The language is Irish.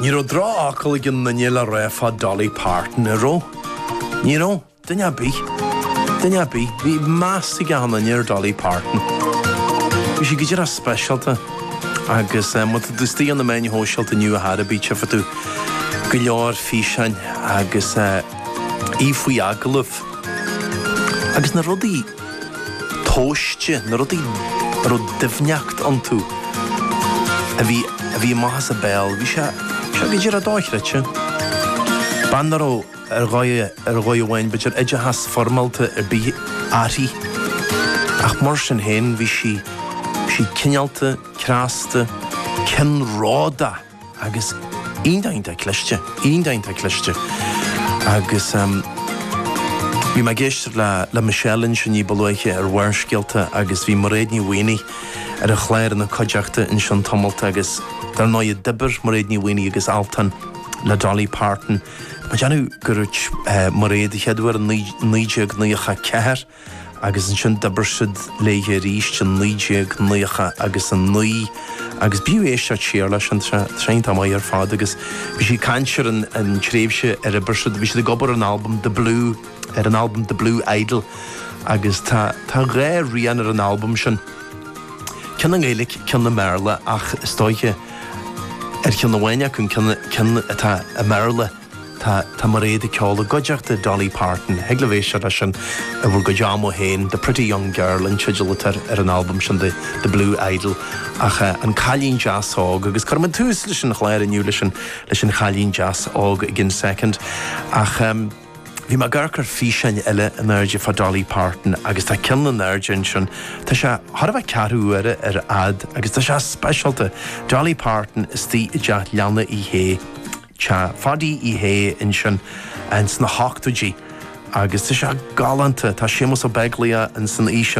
Ní raibh droch-fhocal ag aon nduine le rá fá Dolly Parton, a' raibh? Ní raibh? Duine a' bith? Duine a' bith? Bhí meas ag achan nduine ar Dolly Parton. Bhí sí go díreach speisialta agus má tá tú istigh ar na meáin shóisialta inniu ar ndóighe tchífidh tú go leor físeáin agus í faoi agallamh agus na rudaí tomhaiste, na rudaí a raibh doimhneact iontu, a bhí, a bhí amach as a béal, bhí sé, bhí sé go díreach dochreidte. Bean ná raibh ar dhóigh, ar dhóigh amháin, b'fhéidir, oideachas foirmeálta ar bith aici, ach mar sin féin bhí sí, bhí sí cineálta, creasta, ceannródach. agus iontach cliste, iontach cliste agus em bhí mé ag éisteacht le, le Michelle ansin ní ba luaithe ar Bharrscéalta agus bhí Mairéad Ní Mhaonaigh ar an chlár ina cuideachta ansin tamall agus dar ndóigh d'oibir Mairéad Ní Mhaonaigh agus Altan le Dolly Parton. Mé ag déanamh gur dúirt eh Mairéad an chéad uair in naoi, 1994, agus ansin d'oibir siad léithe arís in 1999 agus b'fhiú éisteacht siar leis an tseantéip ar fad agus bhí sí ag caint ar an tréimhse ar oibir siad, bhí siad ag obair ar an albam The Blue, ar an albam The Blue Idol agus tá tá dhá rian ar an albam sin, ceann i nGaeilic, ceann i mBearla ach istigh ar cheann amháin acu, an ceann ceann atá i mBearla. Tá Tá Mairéad ag ceol i gcuideachta Dolly Parton. Thig libh éisteacht leis sin i bhur gcuid ama féin. The Pretty Young Girl an teideal atá ar an amhrán sin de The Blue Idol. Ach An Cailín Deas Óg agus cuirfimid tús leis an chlár inniu leis an leis an Chailín Deas Óg i gcionn soicind. Ach em bhí mé ag cur físeáin eile in airde fá Dolly Parton agus tá ceann in airde ansin. Tá sé thar a bheith ceathrú uair ar fhad agus tá sé speisialta. Dolly Parton istigh i dteach leanna Uí Shé. Teach Pháidí Uí Shé ansin ins na hochtóidí agus tá sé galánta. Tá Séamus Ó Beaglaoich ins an fhíseán.